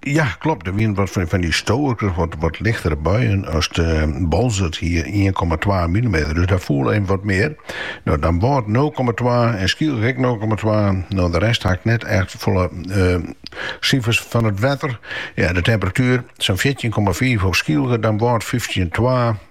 Ja, klopt. Der wiene wat fan dy stoarkers, wat lichtere buien as de Boalsert hie ien komma twa milimeter, dus dêr foel even wat mear. No, Damwâld nul komma twa en Skylge ek nul komma twa. No, de rest ha ik net echt folle sifers fan it wetter. Ja, de temperatuer, sa'n fjirtjin komma fiif op Skylge, Damwâld fyftjin komma twa.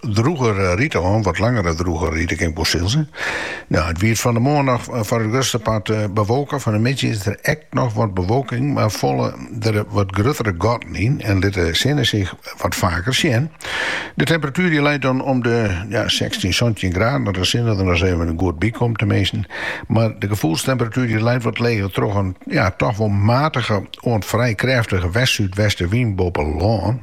Drûge rite oan, wat langere drûge rite kin wol sizze. No, it wie fan de moarn noch foar it grutste part bewolke. Fan de middei is der ek noch wat bewolking, mar falle der wat gruttere gatten yn en lit de sinne sich wat faker sjen. De temperatuer dy leit dan om de sechstjin, santjin graden, dat de sinne der ris even goed by komt teminsten. Mar de gefoelstemperatuer dy leit wat leger troch in toch wol matige oant frij krêftige west-súdwestewyn boppe lân.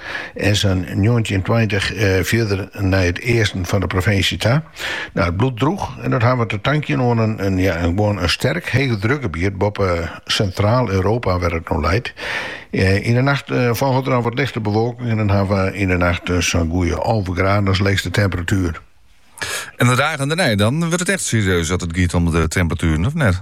en sa'n njoggentjin, tweintich fierder nei it easten fan de provinsje ta. Nou, it bliuwt droech en dat ha we te tankjen oan in, in, ja, in, gewoan in sterk heechedrukgebiet boppe Sintraal-Europa, wêr't it no leit. Yn de nacht folget der noch wat lichte bewolking en dan ha we yn de nacht sa'n goeie alve graden as leechste temperatuer. En de dagen dêrnei dan wurdt it echt serieus as it giet om de temperatueren, of net?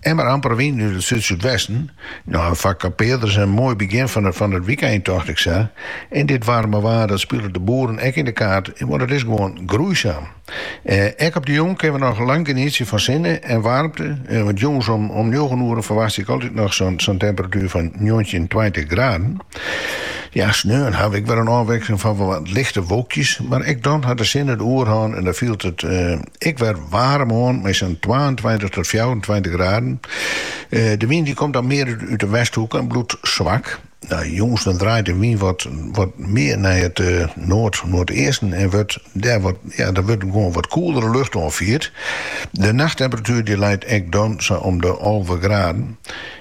En mar amper wyn út it súdsúdwesten. No, foar kampearders in moai begjin fan it wykein, tocht ik sa. En dit waarme waar, dat spilet de boeren ek yn de kaart, want it is gewoan groeisaam. Ek op de jûn kinne we noch lang genietsje fan sinne en waarmte, want jûns om njoggen oeren ferwachtsje ik altyd noch sa'n temperatuer fan njoggentjin, tweintich graden. Ja, sneon ha we ek wer in ôfwikseling fan wat lichte wolkjes, mar ek dan hat de sinne de oerhân en dan fielt it ek wer waarm oan mei sa'n twaentweintich tot fjouwerentweintich graden. De wyn dy komt dan mear út de westhoek en bliuwt swak. No, jûns dan draait de wyn wat wat mear nei it noard-noardeasten en wurdt dêr wat ja dan wurdt it gewoan wat koelere lucht oanfierd. De nachttemperatuer dy leit ek dan sa om de alve graden.